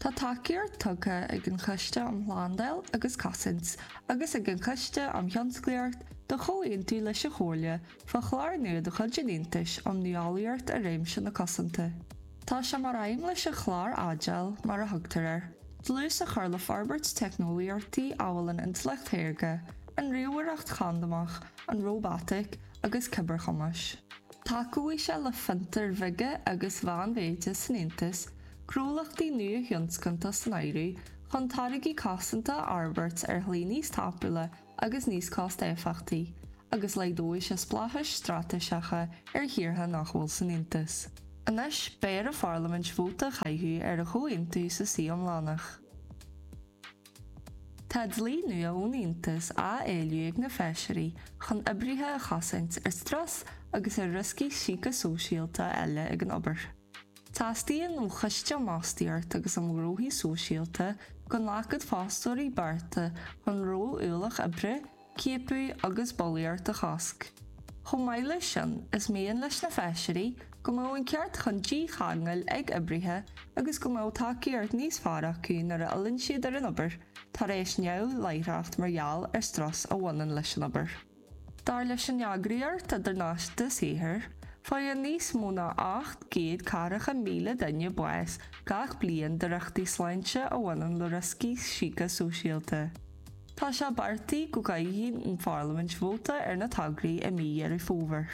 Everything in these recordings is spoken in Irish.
Tá tacaíocht tugtha ag an Choiste um Shlándáil agus Cosaint agus ag an Choiste um Thionsclaíocht do chomhaontú leis an gComhairle fá chlár nua de chuid an Aontais um Nuálaíocht i réimse na cosanta. Tá sé mar aidhm leis an chlár Agile, mar a thugtar air, dlús a chur le forbairt teicneolaíochtaí amhail an Intleacht Shaorga, an Ríomhaireacht Chandamach, an Róbataic agus Cibearchumais. Tacóidh sé le fiontair bheaga agus mheánmhéide san Aontas, gnólachtaí nuathionscanta san áireamh, chun táirgí cosanta a fhorbairt ar shlí níos tapúla agus níos costéifeachtaí, agus laghdóidh sé spleáchais straitéiseacha ar thíortha nach bhfuil san Aontas. Anois, beidh ar an Pharlaimint vóta a chaitheamh ar an chomhaontú sa suí iomlánach. Tá dlí nua ón Aontas á éileamh ag na Feisirí chun oibrithe a chosaint ar strus agus ar rioscaí síceasóisialta eile ag an obair. Teastaíonn ón Choiste um Fhostaíocht agus um Ghnóthaí Sóisialta go nglacfadh fostóirí bearta chun ró-ualach oibre, ciapadh agus bulaíocht a chosc. Chomh maith leis sin, is mian leis na Feisirí go mbeadh an ceart chun dícheangail ag oibrithe agus go mbeadh tacaíocht níos fearr acu nuair a fhilleann siad ar an obair tar éis neamhláithreacht mar gheall ar strus a bhaineann leis an obair. Dar leis an Eagraíocht Idirnáisiúnta Saothair, faigheann níos mó ná 800 daichead míle duine bás gach bliain de riochtaí sláinte a bhaineann le rioscaí síceasóisialta. Tá sé beartaithe go gcaithfidh an Pharlaimint vóta ar na tograí i mí Dheireadh Fómhair.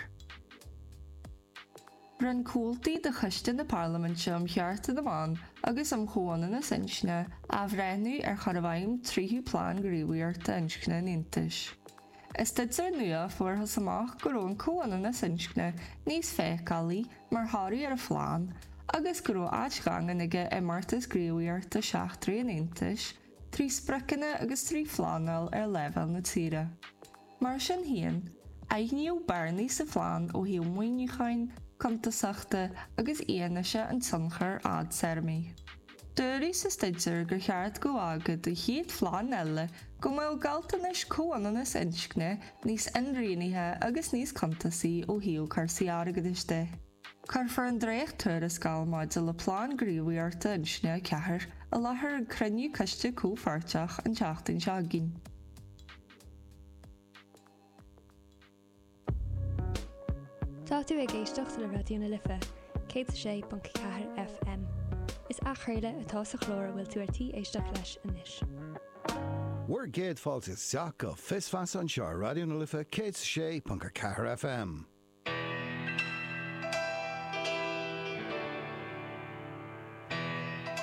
Rinne comhaltaí de Choiste na Parlaiminte um Chearta na mBan agus um Chomhionannas Inscne athbhreithniú ar chur i bhfeidhm tríú plean gníomhaíochta inscne an Aontais. I staidéar nua fuarthas amach go raibh an comhionannas inscne níos feiceálaí mar thoradh ar an phlean agus go raibh áit dhaingean aige i mbeartas gníomhaíochta seachtraí an Aontais trí spriocanna agus trí phleanáil ar leibhéal na tíre. Mar sin féin, aithníodh bearnaí sa phlean ó thaobh maoiniúcháin, cuntasachta agus fhianaise an tionchair fhadtéarmaigh. Dúradh sa staidéar gur cheart go bhfágfadh an chéad phlean eile go mbeadh gealltanais comhionannas inscne níos inrianaithe agus níos cuntasaí ó thaobh cúrsaí airgeadais de. Cuirfear an dréacht-tuarascáil maidir le Plean Gníomhaíochta Inscne 4 i láthair ag cruinniú coiste comhpháirteach an tseachtain seo againn. Tá tú ag éisteacht le Raidió na Life, 106.4 FM. Is athchraoladh atá sa chlár a bhfuil tú ar tí éisteacht leis anois. Bhur gcéad fáilte isteach go Fios Feasa anseo ar Raidió na Life 106.4 FM.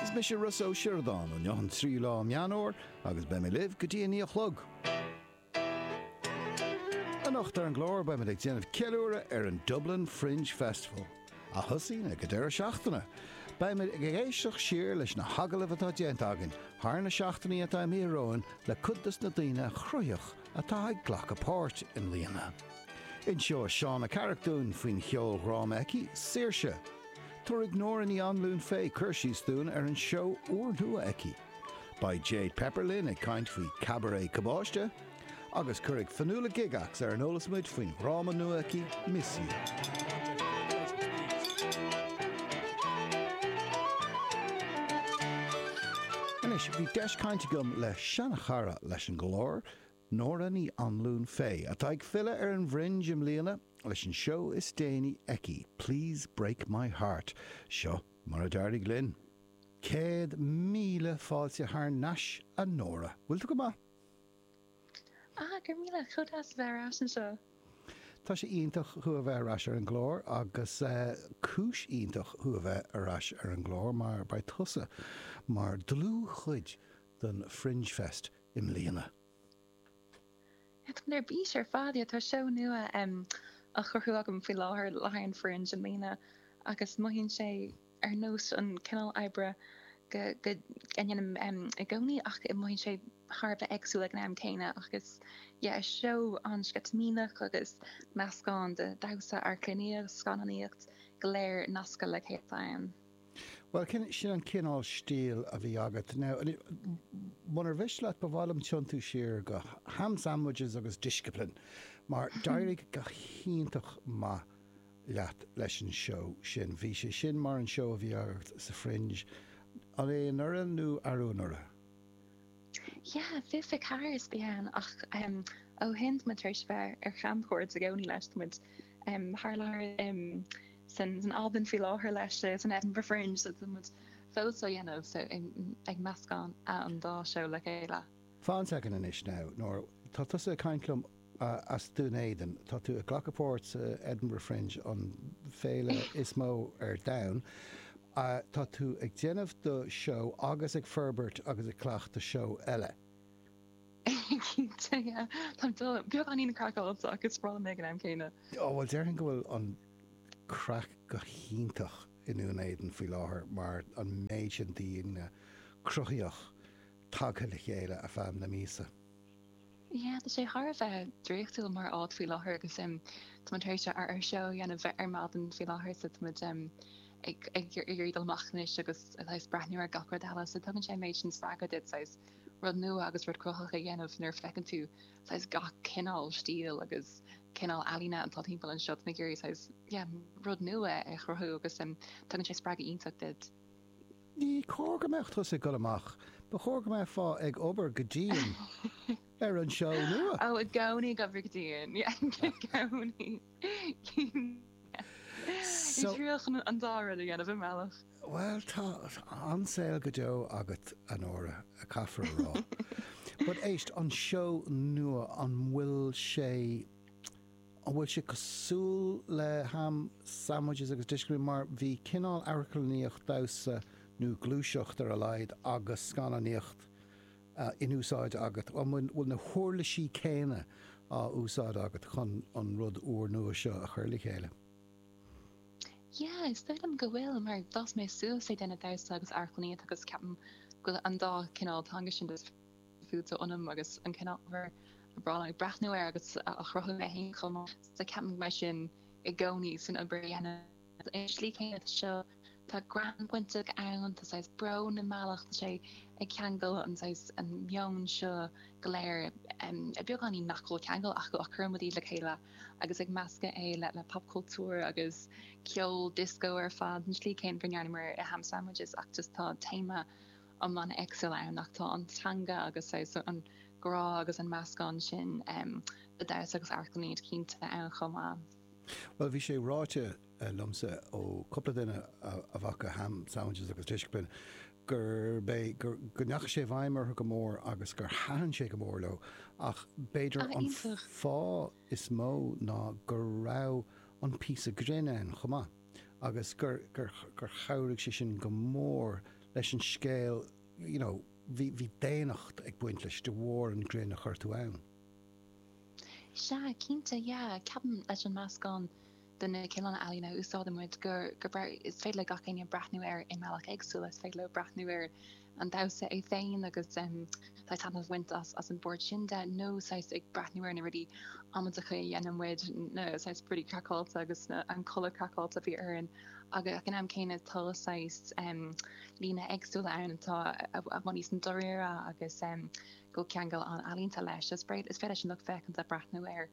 Is mise Rossa Ó Sioradáin Inniu an tríú lá de Mheán Fómhair agus beidh mé libh go dtí a naoi a chlog. Anocht ar an gclár beimid ag déanamh ceiliúradh ar an Dublin Fringe Festival, a thosaíonn ag an deireadh seachtaine. Beimid ag éisteacht siar leis na hagallaimh atá déanta againn thar na seachtainí atá imíthe romhainn le cuid dos na daoine cruthaitheacha atá ag glacadh páirt i mbliana. Inseoidh Shauna Carrick dúinn faoin cheoldhráma aici, Saoirse. Tabharfaidh Nóra Ní Anluain Fay cur síos dúinn ar an seó úrnua aici. Beidh Jade Pepper linn ag caint faoi Cabaret Cabáiste. Agus cuirfidh Fionnuala Gygax ar an eolas muid faoin dhráma nua aici, Miss You. Anois, bhí deis cainte agam le seanchara leis an gClár, Nóra Ní Anluain Fay, atá ag filleadh ar an bhFringe i mbliana leis an seó is déanaí aici, Please Break My Heart. Seo mar a d'éirigh linn. Céad míle fáilte thar n-ais, a Nóra. Bhfuil tú go maith? Ah, go raibh míle. Chomh deas a bheith ar ais anseo. Tá sé iontach thú a bheith ar ais ar an gclár agus cúis iontach thú a bheith ar ais ar an gclár mar beidh tusa mar dlúthchuid don Fringe Fest i mbliana. Táim ar bís ar fad, yeah. Tá seó nua á chruthú agam faoi láthair le haghaidh an Fringe i mbliana agus mothaíonn sé ar nós an cineál oibre a ndéanaim i gcónaí ach mothaíonn sé thar a bheith éagsúil ag an am céanna agus yeah is seó an-sceitimíneach agus meascán de dhamhsa, amharclannaíocht, scannánaíocht, go léir nasctha le chéile ann. Bhuel, sin, sin an cineál stíl a bhí agat. Now, munar mhiste leat, ba mhaith liom tiontú siar go Ham Sandwiches agus Discipline, mar d'éirigh go hiontach maith leat leis an seó sin. Bhí sé sin mar an seó a bhí agat sa Fringe, an é anuraidh nó arú anuraidh? Yeah, fiche fiche ceathair a bhí ann ach em ó shin tá muid tar éis bheith ar chamchuairt i gcónaí leis, tá muid em faoi láthair em san san Albain faoi láthair leis eh san Edinburgh Fringe so tá muid fós á dhéanamh so em ag meascán a an dá seó le chéile. Fan second anois now Nóra, tá tusa ag caint liom as Dún Éideann. Tá tú ag glacadh páirt sa Edinburgh Fringe, an féile is mó ar domhan. Tá tú ag déanamh do seó agus ag forbairt agus ag cleachtadh seó eile. Cinnte, yeah. Táim beagáinín craiceáilte ach is breá liom é ag an am céanna. Ó, bhuel, déarfainn go bhfuil an craic go hiontach i nDún Éideann faoi láthair mar an méid sin daoine cruthaitheacha tagtha le chéile ar feadh na míosa. Yeah, tá sé thar a bheith draíochtúil mar áit faoi láthair agus em táimid tar éis ár ár seó a dhéanamh ar maidin faoi láthair so táimid em ag ag iarraidh dul amach anois agus a saghas breathnú ar gach rud eile so tugann sé an méid sin spreagtha duit saghas rud nua agus rud cruthaitheach a dhéanamh nuair a feiceann tú saghas gach cineál stíl agus cineál ealaíne atá timpeall anseo táimid ag iarraidh saghas yeah rud nua a chruthú agus em tugann sé spreagadh iontach duit. Ní cóir go mbeadh tusa ag dul amach. Ba chóir go mbeifeá ag obair go dian ar an seó nua. Oh, i gcónaí ag obair go dian. Yeah, i gcónaí. Is dóigh liom an dá rud a dhéanamh i mbealach. Bhuel, tá an-saol go deo agat, a Nóra, caithfear a rá. But éist, an seó nua, an bhfuil sé. An bhfuil sé cosúil le ham sandwiches agus discipline? Mar bhí cineál amharclannaíocht, damhsa nó gluaiseacht ar a laghad, agus scannánaíocht in úsáid agat. An bhfuil na huirlisí céanna á úsáid agat chun an rud úr nua seo a chur le chéile? Yeah, is dóigh liom go bhfuil mar d'fhás mé suas ag déanamh damhsa agus amharclannaíocht agus ceapaim go bhfuil an dá cineál teanga sin fite ionam agus an cineál ábhar a mbím ag breathnú air agus a chruthaím féin chomh maith so ceapaim go mbeidh sin i gcónaí san obair a dhéanaim agus ar an slí céanna tá seo tá greann bainteach ann tá saghas brón i mbealach tá sé ag ceangal an saghas an meon seo go léir i mbeagáinín nach bhfuil ceangal acu ach cuirimid iad le chéile agus ag meascadh é le le popchultúr agus ceol disco ar fad an slí céanna go ndearnamar i ham sandwiches ach just tá téama iomlán éagsúil ann ach tá an teanga agus an grá agus an meascán sin de damhsa agus amharclannaíocht cinnte ann chomh maith. Bhuel, bhí sé ráite liomsa ó cúpla duine a bhfaca Ham Sandwiches agus Discipline gurb é, go ndeachaigh sé i bhfeidhm orthu go mór agus gur thaitin sé go mór leo ach b'fhéidir an fáth is mó ná go raibh an píosa grinn ann chomh maith. agus gur, gur, gur chabhraigh sé sin go mór leis an scéal you know bhí, bhí daonnacht ag baint leis de bharr an grinn a chuir tú ann. Sea, cinnte, yeah. Ceapaim leis an meascán de na cineál ealaíne a úsáideann muid gur, gur féidir, is féidir le gach éinne breathnú air i mbealach éagsúil, is féidir leo breathnú air an damhsa é féin agus taitneamh a bhaint as an bpáirt sin de nó saghas ag breathnú ar na rudaí amaideacha a dhéanann muid, na saghas rudaí craiceáilte agus an culaith craiceáilte a bhí orainn agus ag an am céanna tá saghas líne éagsúla ann atá i bhfad níos dáiríre agus go ceangal an-ealaíonta leis. Is féidir leis an lucht féachanta breathnú ar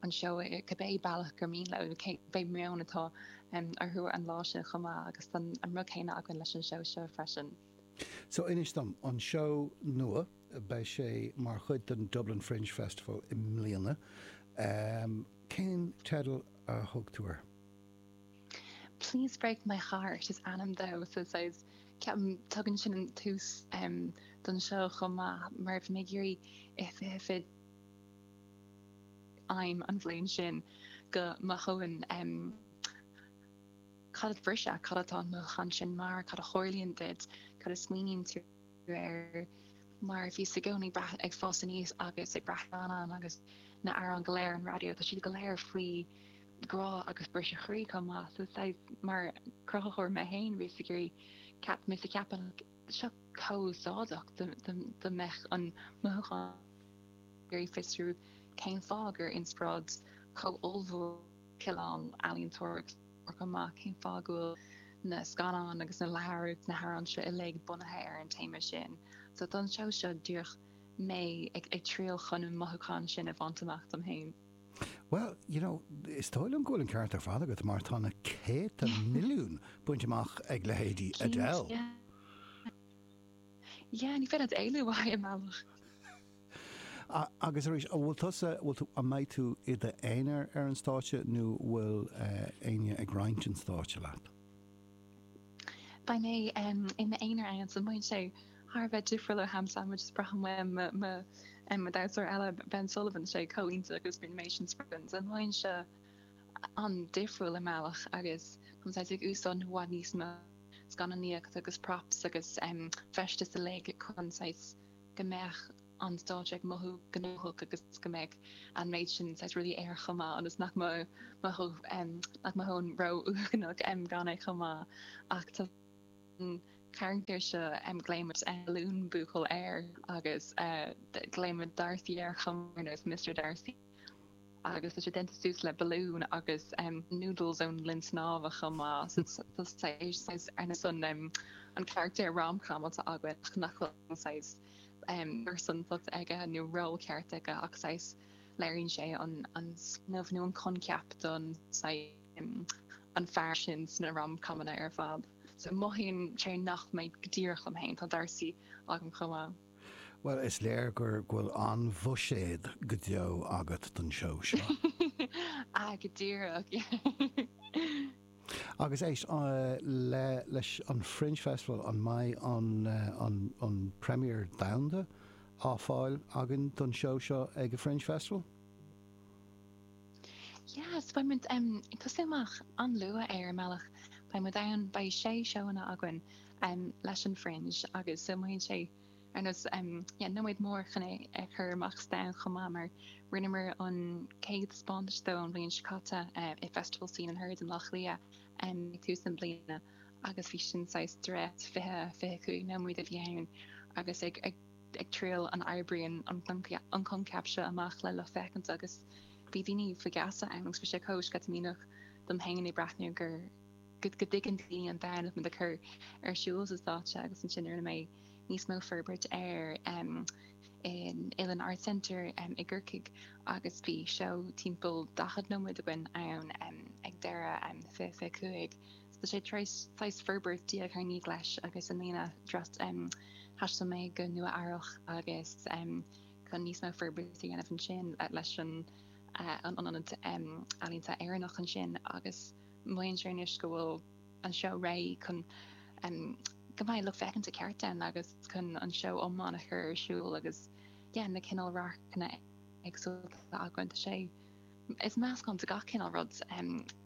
anseo ar cibé bealach gur mian leo nó cibé meon atá orthu an lá sin chomh maith agus tá an rud céanna againn leis an seó seo freisin. So inis dom, an seó nua, beidh sé mar chuid den Dublin Fringe Festival i mbliana. Cén teideal a thug tú air? Please Break My Heart is ainm dó so saghas ceapaim tugann sin an tuiscint don seó chomh maith mar bhí mé ag iarraidh if if it aidhm an bhliain sin go mothóinn cad é briseadh, cad atá an mothúchán sin mar, cad a tharlaíonn duit, cad a smaoiníonn tú air mar bhíos i gcónaí ag fás aníos agus ag breathnú ar scannáin agus na amhráin go léir ar an raidió, tá siad go léir faoi grá agus briseadh croí chomh maith so saghas mar cruthaitheoir mé féin bhíos ag iarraidh ceap, mise a cheapann. seo chomh húsáideach dá mbeadh an mothúchán ag iarraidh fiosrú cén fáth gur inspioráid chomh ollmhór cineál ealaíontóra ar chur amach, cén fáth go bhfuil na scannáin agus na leabhair agus na hamhráin seo uilig bunaithe ar an téama sin. So don seó seo díreach mé ag triail chun an mothúchán sin a bhaint amach dom féin. Well, you know, is dóigh liom go bhfuil an ceart ar fad agat mar tá na céadta milliún bainte amach ag leithéidí Adele. Cinnte. Yeah, ní féidir leat éalú i bhfad i mbealach. Agus arís, an bhfuil tusa, bhfuil tú, an mbeidh tú i d'aonar ar an stáitse nó bhfuil éinne ag roinnt an stáitse leat? Beidh mé i m'aonar ann so beidh sé thar a bheith difriúil ó Ham Sandwich is braithim uaim mo dhamhsóir eile Ben Sullivan tá sé chomh hiontach agus bíonn an méid sin spraoi againn so beidh sé an-difriúil i mbealach agus táim saghas ag úsáid i bhfad níos mó scannánaíocht agus props agus feisteas uilig chun saghas go mbeadh an stáitse ag mothú gnóthach agus go mbeidh an méid sin saghas rudaí air chomh maith ionas nach mothóinn ró-uaigneach gan é chomh maith ach tá an carachtar seo, glaoimid Balloon Buachaill air agus glaoimid Darcy air chomh maith ar nós Mister Darcy agus tá sé déanta suas le balún agus noodles ón linn snámha chomh maith so tá saghas ar nós an carachtar rom-com atá againn ach nach bhfuil saghas pearsantacht aige nó ról ceart aige ach saghas léiríonn sé an an smaoineamh nó an coincheap don an fear sin sna rom comanna ar fad. So mothaíonn sé nach mbeidh mé díreach liom féin, tá Darcy agam chomh maith. Bhuel, is léir gur go bhfuil an-bhuiséad go deo agat don seó seo. Ah, go díreach! Agus éist leis an Fringe Festival, an mbeidh an an an premiere domhanda á fáil againn den seó seo ag an Fringe Festival? Yes, beidh muid em ag tosú amach an-luath i mbealach. Beidh muid ann, beidh sé seóanna againn em leis an Fringe agus so mothaíonn sé, Agus yeah nóiméad mór chun é a chur amach sa domhan chomh maith mar rinneamar an chéad taispeántas de an bhliain seo caite i Festival Scene and Heard i mBleá Cliath ag tús na bliana agus bhí sin saghas dréacht 20, 25 nóiméad a bhí ann agus ag ag triail an oibríonn an coincheap seo amach le lucht féachana agus bhí daoine faoi gheasa ann agus bhí sé chomh sceitimíneach dom féin a bheith ag breathnú gur go dtuigeann daoine an dinimic atá muid ag cur ar siúl ar an stáitse agus ansin rinne mé níos mó forbairt air in Uillinn Arts Centre i gCorcaigh agus bhí seó timpeall 40 nóiméad againn ann ag deireadh 2025 so tá sé saghas forbairt diaidh ar ndiaidh leis agus i mbliana thaistil mé go Nua Eabhrach agus chun níos mó forbairt a dhéanamh ansin leis an ionad ealaíonta Éireannach ansin agus Mothaíonn sé anois go bhfuil an seó réidh chun go mbeidh lucht féachana ceart ann agus chun an seó iomlán a chur ar siúl agus yeah na cineál radharcanna éagsúlta a bhaint as é. Is meascán de gach cineál rud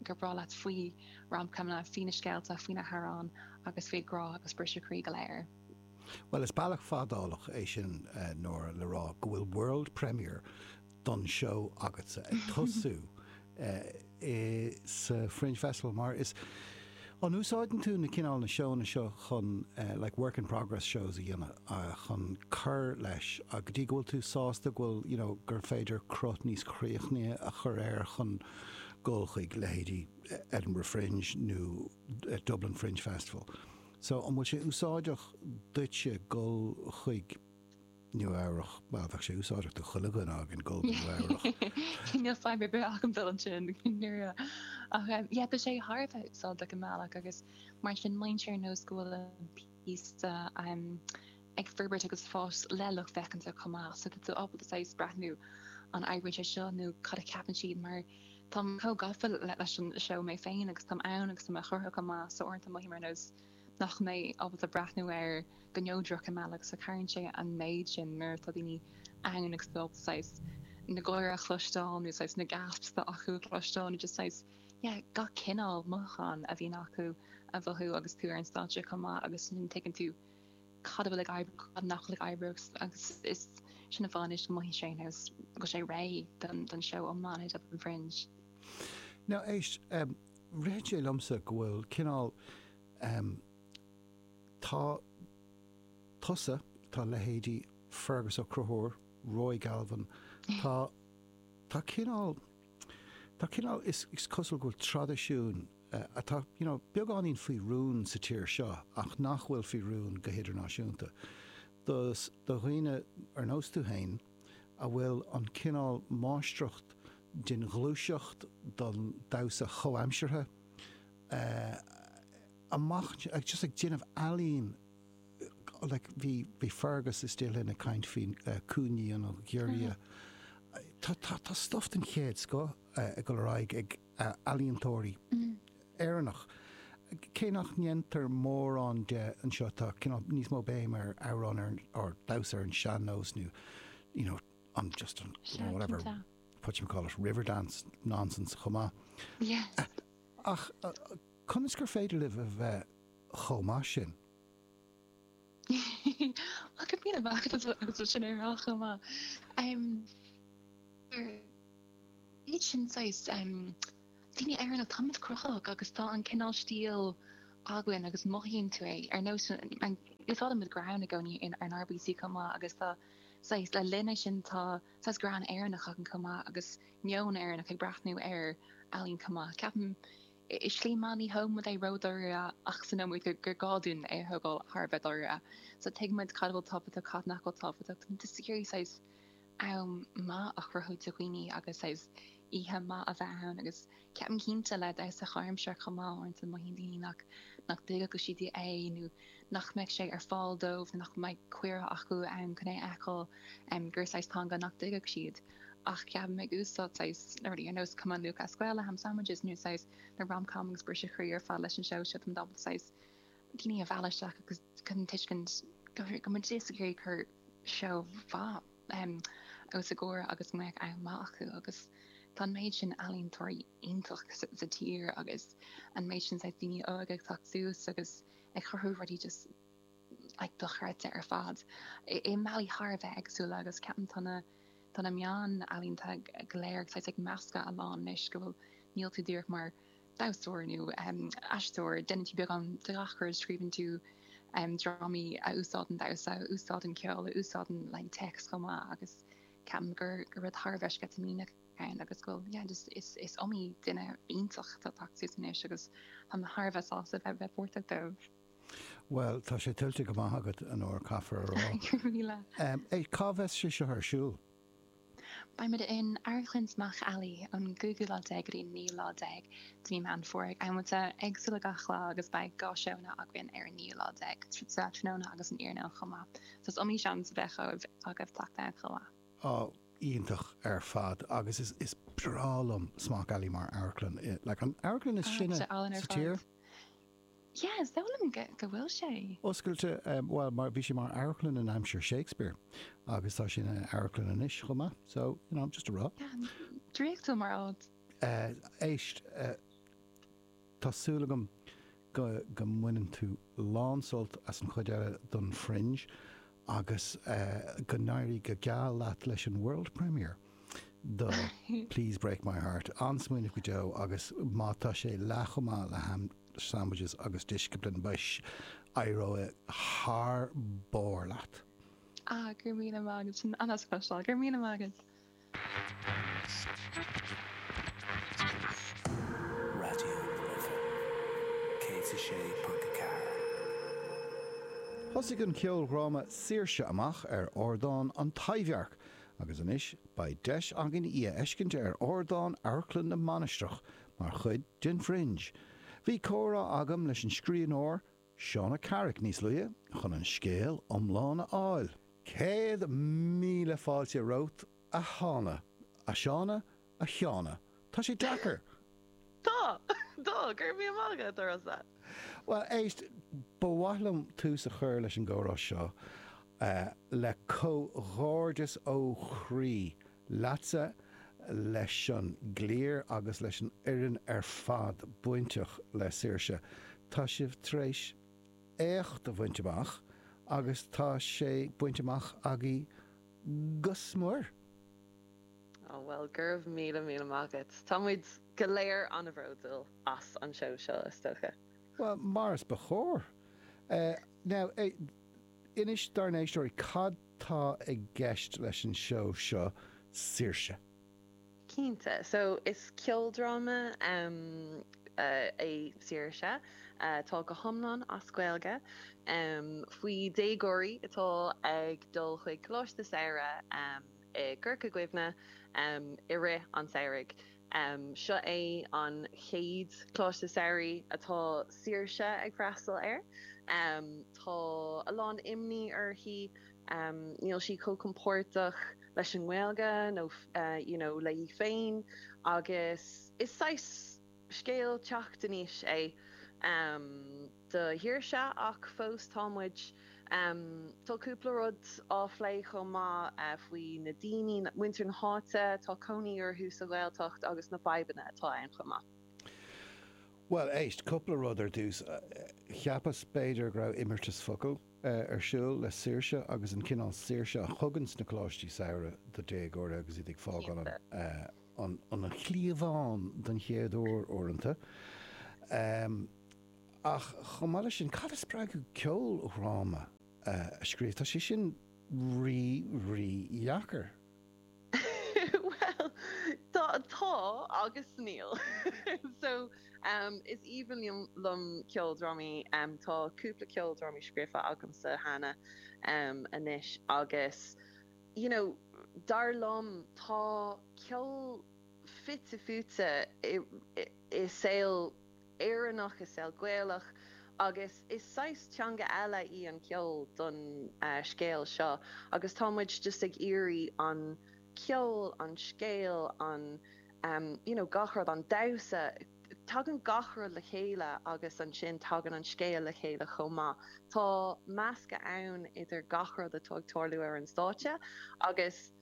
gur breá leat faoi rom-comanna, faoi na scéalta, faoi na hamhráin agus faoin ngrá agus briseadh croí go léir. Bhuel is bealach fadálach é sin anois le rá go bhfuil world premiere den seó agatsa ag tosú i sa Fringe Festival mar is an úsáideann tú na cineál na seóanna seo chun like work in progress shows a dhéanamh chun cur leis go dtí go bhfuil tú sásta go bhfuil you know gur féidir cruth níos críochnaithe a chur air chun dul chuig leithéidí Edinburgh Fringe nó Dublin Fringe Festival so an bhfuil sé úsáideach duitse dul chuig Nua-Eabhrach, bhuel, bheadh sé úsáideach do chuile dhuine againn dhul go Nua-Eabhrach. Níl fadhb ar bith agam dul ansin, ní raibh. Ach yeah, tá sé thar a bheith úsáideach i mbealach agus mar sin mothaíonn sé ar nós go bhfuil an píosa um ag forbairt agus fás le lucht féachana chomh maith so tá tú ábalta saghas breathnú an oibríonn sé seo nó cad a cheapann siad mar táim chomh gafa leis an seó mé féin agus táim ann agus tá mé á chruthú chomh maith so uaireanta mothaím ar nós nach mbím ábalta breathnú air go neodrach i mbealach so cabhraíonn sé an méid sin nuair atá daoine ann agus a bheith ábalta saghas na gáire a chloisteáil nó saghas na gasps acu a chloisteáil nó just saghas yeah gach cineál mothúchán a bhíonn acu a mhothú agus tú ar an stáitse chomh maith agus ansin tuigeann tú cad a bhfuil ag oibriú cad nach bhfuil ag oibriú agus is sin an fáth anois go mothaíonn sé ar nós go bhfuil sé réidh don don seó iomlán i Dublin Fringe. Now éist, Ritheann sé liomsa go bhfuil cineál ehm, tá tusa, tá leithéidí Fearghus Ó Conchúir, Roy Galvin, tá, tá cineál, tá cineál, is cosúil go bhfuil traidisiún eh, atá you know, beagáinín faoi rún sa tír seo ach nach bhfuil faoi rún go hidirnáisiúnta do, do dhaoine ar nós tú féin, a bhfuil an cineál máistreacht den ghluaiseacht don damhsa chomhaimseartha ach just ag déanamh ealaín like bhí bhí Fearghus is tú féin ag caint faoi Cúinne an Ghiorria tá tá tá stuff den chéad scoth ag dul ar aghaidh ag ealaíontóirí Éireannach. Cé nach ndéantar mórán de anseo, tá cineál níos mó béim ar amhrán, ar damhsa, ar an sean-nós nó you know an just an whatever, whatchamacallit, Riverdance nonsense chomh maith. Ach conas gur féidir libh a bheith chomh maith sin? Ach is mian a bheadh agus bhfuil sin ar ais chomh maith. Ar iad sin saghas daoine Éireannacha táimid cruthaitheach agus tá an cineál stíl againn agus mothaíonn tú é. Ar nós úsáideann muid greann i gcónaí ar an RBC chomh maith agus tá saghas le linn é sin tá saghas greann Éireannach againn chomh maith agus meon Éireannach ag breathnú ar ealaín chomh maith. Ceapaim. i slí maith ní thógaimid é ró-dháiríre ach ansin tuigimid gur gá dúinn é a thógáil thar a bheith dáiríre so tuigimid cad a bhfuil tábhachtach cad nach bhfuil tábhachtach táimid just ag iarraidh saghas am maith a chruthú do dhaoine agus saghas oíche maith a bheith ann agus ceapaim cinnte le damhsa comhaimseartha chomh maith uaireanta mothaíonn daoine nach nach dtuigfeadh siad é nó nach mbeadh sé ar fáil dóibh nó nach mbeadh cuireadh acu ann chun é a fheiceáil em gur saghas teanga nach dtuigfeadh siad. ach ceapaim ag úsáid saghas na rudaí ar nós Cumann Lúthchleas Gael le ham sandwiches nó saghas na rom com agus briseadh croí ar fad leis an seó seo táimid ábalta saghas daoine a mhealladh isteach agus chun tuiscint go go muid just ag iarraidh cur seó maith em os a gcomhair agus go mbeadh am maith acu agus tá an méid sin ealaíontóirí iontach sa, sa tír agus an méid sin saghas daoine óga ag teacht suas agus ag cruthú rudaí just dochreidte ar fad i mbealaí thar a bheith éagsúla agus ceapaim tá na tá na meáin ealaíonta go léir saghas ag meascadh a lán anois go bhfuil níl tú díreach mar damhsóir nó aisteoir déanann tú beagán de ghach rud scríobhann tú drámaí a úsáideann damhsa a úsáideann ceol a úsáideann like téacs chomh maith agus ceapaim gur gur rud thar a bheith sceitimíneach atá ann agus go bhfuil yeah just is is iomaí duine iontach atá ag teacht suas anois agus tá mé thar a bheith sásta a bheith páirteach leo. Bhuel, tá sé tuillte go maith agat anois, caithfear a rá. Go raibh míle. É, cá bheas sé seo ar siúl? Beimid in Amharclann Smock Alley ón gcúigiú lá déag go dtí an naoú lá déag de mhí Meán Fómhair ag amanta éagsúla gach lá agus beidh dhá sheó againn ar an naoú lá déag, sa tráthnóna agus san iarnóin chomh maith. So is iomaí seans a bheidh agaibh teacht ann chomh maith. Á, iontach ar fad agus is, is breá liom Smock Alley mar amharclann. Like, an amharclann is sine sa tír. Yeah, is dóigh liom go bhfuil sé. Oscailte, bhuel, mar, bhí sé mar amharclann in aimsir Shakespeare agus tá sé ina amharclann anois chomh maith, so, you know, just a rá. Yeah, draíochtúil mar áit. Éist, tá súil agam go mbaineann tú lán-sult as an chuid eile don Fringe. Agus go n-éirí go geal leat leis an world premiere do Please Break My Heart. An-smaoineamh go deo agus má tá sé leath chomh maith le ham sandwiches agus Discipline boys, éireoidh thar barr leat. Ah, go raibh míle maith agat. Sin an-deas a chloisteáil. Go raibh míle maith agat. Raidió na Life 106.4. Thosaigh an ceoldhráma Saoirse? amach ar ardán an Taibhdhearc agus anois beidh deis againn í a fheiscint ar ardán Amharclann na Mainistreach mar chuid den Fringe. Bhí comhrá agam leis an scríbhneoir, Shauna Carrick níos luaithe chun an scéal iomlán a fháil. Céad míle fáilte romhat, a Shána. a Shauna? a Shauna? Tá sé deacair! Tá! Tá! Go raibh míle maith agat, a Rossa! Bhuel, éist, ba mhaith liom tús a chur leis an gcomhrá seo le comhghairdeas ó chroí leatsa, leis an gcliar agus leis an fhoireann ar fad bainteach le Saoirse. Tá sibh tar éis éacht a bhaint amach agus tá sé bainte amach agaibh go smior. Oh, bhuel, go raibh míle míle maith agat. Tá muid go léir an-bhródúil as an seó seo, is dócha. Bhuel, mar is ba chóir. Now, eh. Inis dár n-éisteoirí cad tá i gceist leis an seó seo Saoirse? Cinnte. So is ceoldráma é Saoirse, tá go hiomlán as Gaeilge, faoi déagóirí atá ag dul chuig coláiste samhraidh. i gCorca Dhuibhne i rith an tsamhraidh. Seo é an chéad choláiste samhraidh atá Saoirse ag freastal air. Tá a lán imní uirthi, níl sí chomh compordach leis an nGaeilge nó you know léi féin agus is saghas. Scéal teacht in aois é do Shaoirse ach fós tá muid, tá cúpla rud á phlé chomh maith faoi na daoine, muintir na háite atá cónaí orthu sa Ghaeltacht agus na fadhbanna atá ann chomh maith. Bhuel, éist, cúpla rud ar dtús. Cheapas b'fhéidir go raibh imeartas focal ar siúl le saoirse agus an cineál saoirse a thugann na coláistí samhraidh do dhéagóirí agus iad ag fágáil an. an chliabhán don chéad uair, uaireanta. Ach chomh maith le sin, cad a spreag ceoldhráma a scríobh? Tá sé sin rí, rí dheacair. Bhuel, tá, tá agus níl. So, is aoibhinn liom, liom ceoldrámaí. Tá cúpla ceoldrámaí scríofa agamsa cheana anois agus. you know, dar liom tá ceol fite fuaite i saol Éireannach, i saol Gaelach agus is saghas teanga eile í an ceol don scéal seo agus tá muid just ag iarraidh an ceol, an scéal, an you know gach rud, an damhsa. Tagann gach rud le chéile agus ansin tagann an scéal le chéile chomh maith. Tá meascadh ann idir gach rud atá ag tarlú ar an stáitse agus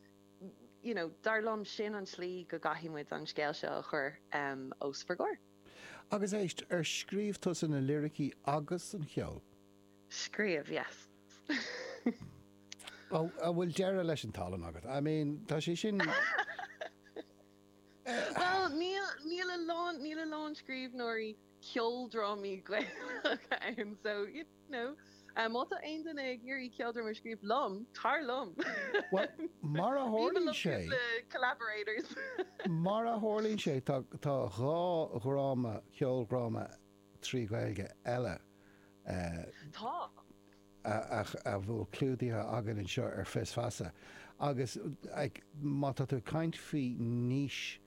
you know dar liom sin an tslí go gcaithfidh muid an scéal seo a chur os bhur gcomhair. Agus éist, ar scríobh tusa na liricí agus an cheol? Scríobh, yes. An bhfuil deireadh leis an tallann agat? I mean, tá sé sin. Bhuel, níl, níl a lán, níl a lán scríbhneoirí ceoldrámaí Gaelacha ann, so, you know, má tá aon duine ag iarraidh ceoldráma a scríobh liom, tar liom. Bhuel, mar a tharlaíonn sé. I mean I love cúpla collaborators. Mar a tharlaíonn sé, tá, tá dhá dhráma, ceoldhráma trí Ghaeilge eile atá clúdaithe againn anseo ar Fios Feasa agus má tá tú ag caint faoi niche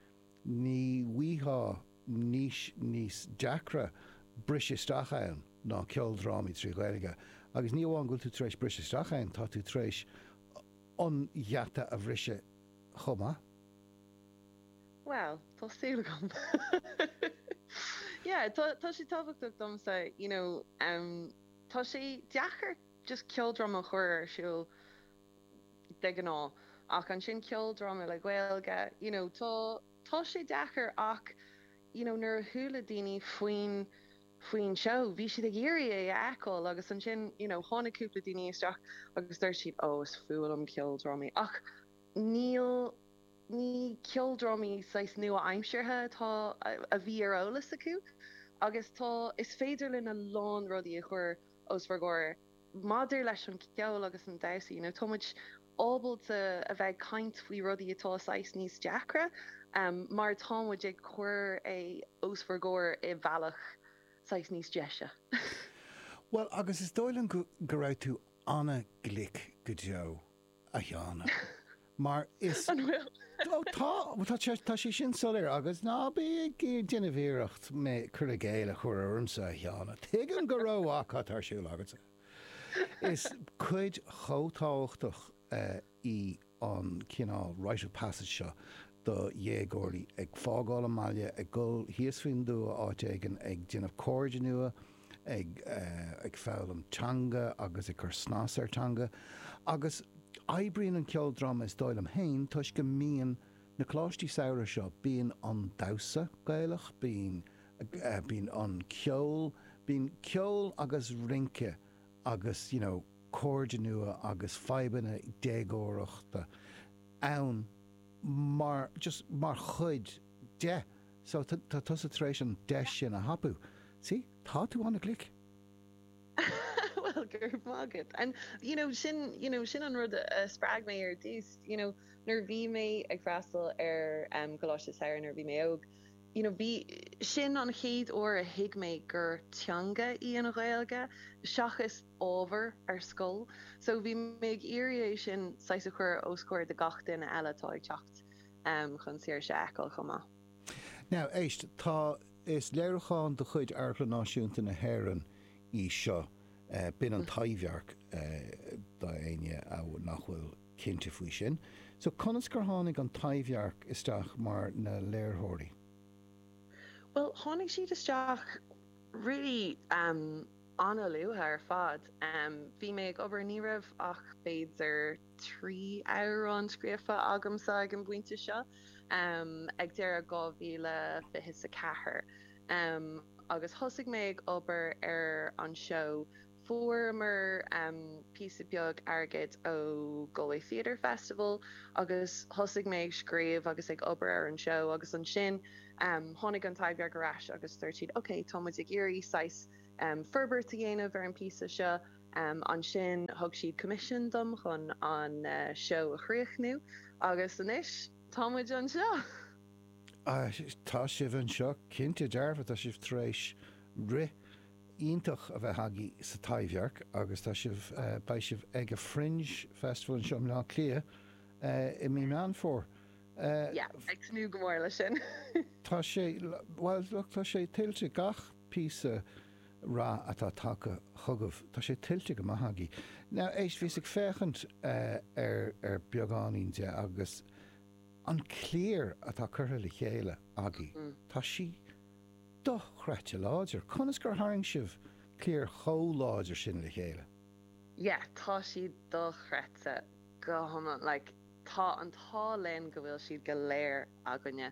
ní bhfaighfeá niche níos deacra briseadh isteach ann ná ceoldrámaí trí Ghaeilge agus ní amháin go bhfuil tú tar éis briseadh isteach ann tá tú tar éis an gheata a bhriseadh chomh maith. Bhuel, tá súil agam. Yeah, tá tá sé tábhachtach domsa, you know, um, tá sé deacair just ceoldráma a chur ar siúl de ghnáth ach ansin ceoldráma le Gaeilge, you know, tá tá sé deacair ach, you know, nuair a chuala daoine faoin faoin seó bhí siad ag iarraidh é a fheiceáil agus ansin, you know, tháinig cúpla daoine isteach agus dúirt siad, oh, is fuath liom ceoldrámaí ach níl Ní ceoldrámaí saghas nua-aimseartha atá, a bhí ar eolas acu. Agus tá, is féidir linn a lán rudaí a chuir os bhur gcomhair maidir leis an gceol agus an damhsa, nó táimid ábalta a bheith ag caint faoi rudaí atá saghas níos deacra mar táimid ag cuir é os bhur gcomhair i mbealach saghas níos deise. Bhuel, agus is dóigh liom go raibh tú an-ghlic go deo. a Sheáin, mar is. An bhfuil? Ó tá, tá sé sin soiléir agus ná bí ag déanamh iarracht cur i gcéill a chur ormsa a Sheáin, tuigim go rómhaith cad tá ar siúl agatsa. Is cuid chomh tábhachtach í an cineál rite of passage seo do dhéagóirí, ag fágáil a mbaile, ag dul thíos faoin dtuath áit éigin, ag déanamh cairde nua, ag foghlaim teanga agus ag cur snas ar teanga agus oibríonn an ceoldráma is dóigh liom féin toisc go mbíonn na coláistí samhraidh seo bíonn an damhsa Gaelach, bíonn bíonn an ceol, bíonn ceol agus rince agus you know cairde nua agus fadhbanna déagóireachta ann mar just mar chuid. de so tá tusa tar éis an deis sin a thapú. See? Tá tú an-ghlic. Bhuel, go raibh maith agat. And you know, sin you know, sin an rud a spreag mé ar dtús. You know, nuair a bhí mé ag freastal ar um, Coláiste Samhraidh nuair a bhí mé óg, you know, bhí, sin an chéad uair a thuig mé gur teanga í an Ghaeilge seachas ábhar ar scoil. So bhí mé ag iarraidh é sin saghas a chur os comhair do gach duine eile atá ag teacht. chun saoirse a fheiceáil chomh maith. Now, éist, tá, is léiriúchán de chuid Amharclann Náisiúnta na hÉireann í seo, b'in an Taibhdhearc do éinne nach bhfuil cinnte faoi sin. So, conas gur tháinig an Taibhdhearc isteach mar na léiritheoirí? Bhuel, tháinig siad isteach really ana-luath ar fad. Bhí mé ag obair, ní raibh ach b'fhéidir. trí amhrán scríofa agamsa ag an bpointe seo, ag deireadh 2024, agus thosaigh mé ag obair ar an seó. Fuaireamar píosa beag airgid ó Galway Theatre Festival agus thosaigh mé ag scríobh agus ag obair ar an seó agus ansin tháinig an Taibhdhearc ar ais agus dúirt siad, ok, tá muid ag iarraidh saghas forbairt a dhéanamh ar an bpíosa seo. Ansin thug siad coimisiún dom chun an seó a chríochnú agus anois tá muid anseo! Tá sibh anseo cinnte dearfa, tá sibh tar éis rith iontach a bheith agaibh sa Taibhdhearc agus tá sibh, beidh sibh ag an Fringe Festival anseo i mBleá Átha Cliath i mí Meán Fómhair. Yeah, ag tnúth go mór leis sin. Tá sé, bhuel, tá sé tuillte, gach Píosa rath atá tagtha chugaibh. Tá sé tuillte go maith agaibh. Now, éist, bhíos ag féachaint ar beagáinín de agus an cliar atá curtha le chéile agaibh, tá sí dochreidte láidir. Conas gur tharraing sibh cliar chomh láidir sin le chéile? Yeah, tá siad dochreidte go hiomlán. Like, tá an t-ádh linn go bhfuil siad go léir againne.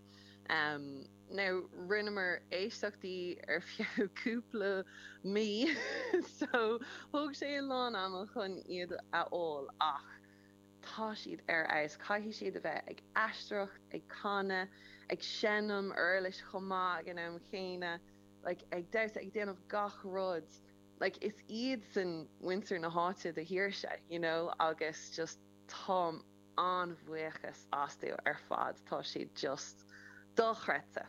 Now, rinneamar éisteachtaí ar feadh cúpla mí so thóg sé a lán ama chun iad a fháil ach tá siad ar fheabhas. Caithfidh siad a bheith ag aisteoireacht, ag canadh, ag seinm uirlis chomh maith ag an am chéanna, like ag damhsa, ag déanamh gach rud. Like is iadsan muintir na háite do Shaoirse, you know, agus just tá. an-bhuíochas acu ar fad, tá siad just dochreidte.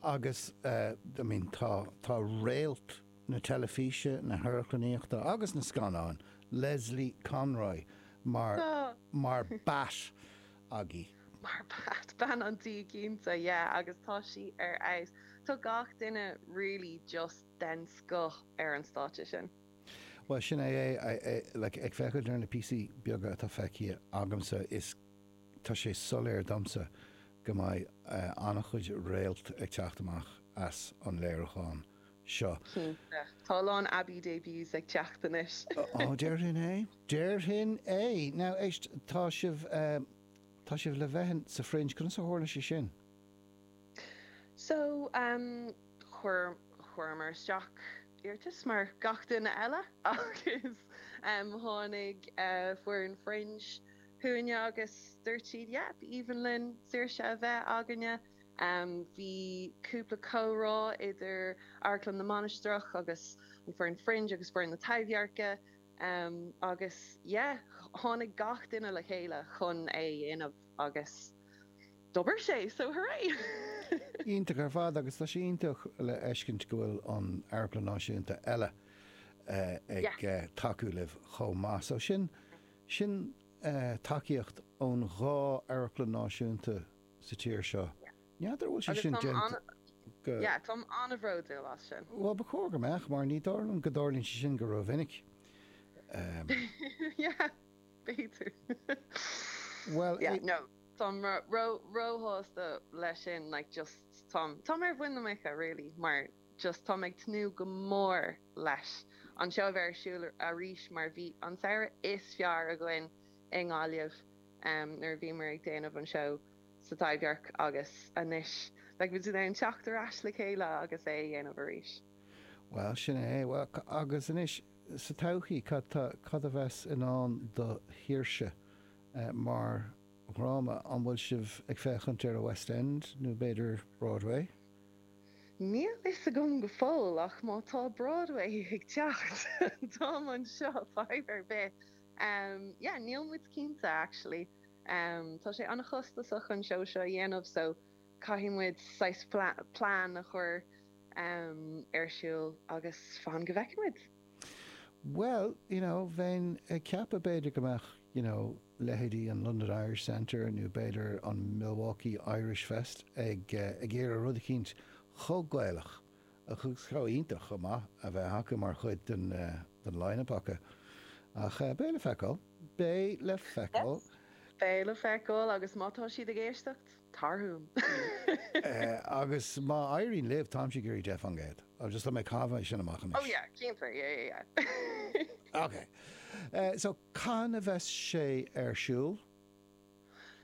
Agus I mean tá réalt na teilifíse, na hamharclannaíochta agus na scannán, Lesley Conroy mar Bat agaibh. Mar Bat, bean an tí cinnte, yeah agus tá sí ar fheabhas. Tá gach duine really just den scoth ar an stáitse sin. Bhuel, sin é é. Like, ag féachaint ar na píosaí beaga atá feicthe agamsa, is, tá sé soiléir domsa go mbeidh an-chuid réalt ag teacht amach as an léiriúchán seo. Cinnte. Tá a lán Abbey debuts ag teacht anois. Ó, déarfainn é. Déarfainn é! Now, éist, tá sibh, tá sibh le bheith sa Fringe. Conas a tharla sé sin? So, chuir, chuireamar isteach iarratas mar gach duine eile agus tháinig foireann Fringe chugainne agus dúirt siad yeah, b'aoibhinn linn Saoirse a bheith againne. Bhí cúpla comhrá idir Amharclann na Mainistreach agus an fhoireann Fringe agus foireann na Taibhdheirce agus yeah, tháinig gach duine le chéile chun é a dhéanamh agus. D'oibrigh sé, so hurray! Iontach ar fad agus tá sé iontach le feiscint go bhfuil an Amharclann Náisiúnta eile ag tacú libh chomh maith. So sin, sin tacaíocht ón dhá amharclann náisiúnta sa tír seo. N'fheadar an bhfuil sé Agus sin tá sé déanta go, yeah, táim an-bhródúil as sin. Bhuel ba chóir go mbeadh mar ní dóigh liom go dtarlaíonn sé sin go ró-mhinic. Yeah, b'fhéidir. Bhuel, yeah, no. táim ríshásta leis sin like just táim táim ar mhuin na muice really mar just táim ag tnúth go mór leis an seó a bheith ar siúl arís mar bhí an samhradh is fearr againn i nGaillimh em nuair a bhíomar ag déanamh an seó sa Taibhdhearc agus anois like táimid in ann teacht ar ais le chéile agus é a dhéanamh arís. Bhuel sin é bhuel agus anois sa todhchaí cad tá cad a bheas i ndán do Shaoirse mar dhráma, an bhfuil sibh ag féachaint ar a West End nó b'fhéidir Broadway? Níl fhios agam go fóill ach má tá Broadway ag teacht táim anseo fadhb ar bith. Yeah, níl muid cinnte actually. Tá sé an-chostasach an seó seo a dhéanamh so caithfidh muid saghas plean a chur ar siúl agus fan go bhfeicfidh muid. Bhuel, you know, bheinn ag ceapadh b'fhéidir go mbeadh, you know, leithéidí an London Irish Centre nó b'fhéidir an Milwaukee Irish Fest ag, eh, ag iarraidh rud eicínt chomh Gaelach agus chomh iontach chomh maith a bheith acu mar chuid den eh, den line-up acu. Ach eh, beidh le feiceáil. Beidh le feiceáil. Beidh le feiceáil agus má tá siad ag éisteacht. tarhun. Agus má éiríonn libh, táimse ag iarraidh deich fan gcéad. Just tá mé ag caitheamh é sin amach anois. Oh yeah, cinnte, yeah, yeah, yeah. Ok. So, cathain a bheas sé ar siúl?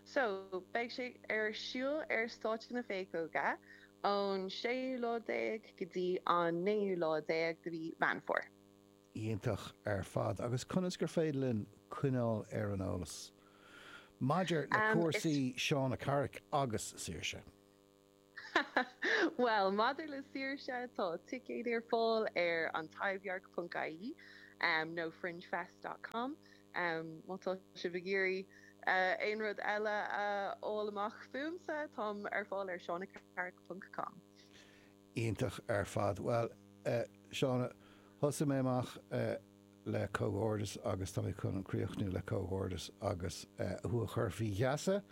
So, beidh sé ar siúl ar stáitse na Péacóige ón séú lá déag go dtí an naoú lá déag de mhí Mheán Fómhair. Iontach ar fad agus conas gur féidir linn coinneáil ar an eolas maidir le cúrsaí Shauna Carrick agus Saoirse? Bhuel, maidir le Saoirse, tá ticéid ar fáil ar An Taibhdhearc ponc ie nó Fringefest dot com má tá sibh ag iarraidh aon rud eile a fháil amach fúmsa, táim ar fáil ar shaunacarrick ponc com. Iontach ar fad. Bhuel, eh, Shauna, thosaigh mé amach, eh, le comhghairdeas agus tá mé chun críochnú le comhghairdeas agus, eh, thú a chur faoi gheasa,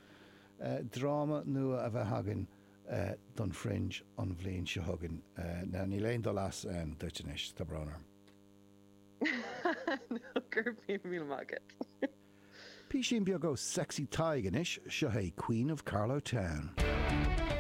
eh, dráma nua a bheith againn, eh, don Fringe an bhliain seo chugainn. Eh, now níl aon dul as, em, duit anois, tá brón orm. Nó go raibh mí, míle maith agat. Písín beag ó Sexy Tadhg anois, seo é Queen of Carlow Town.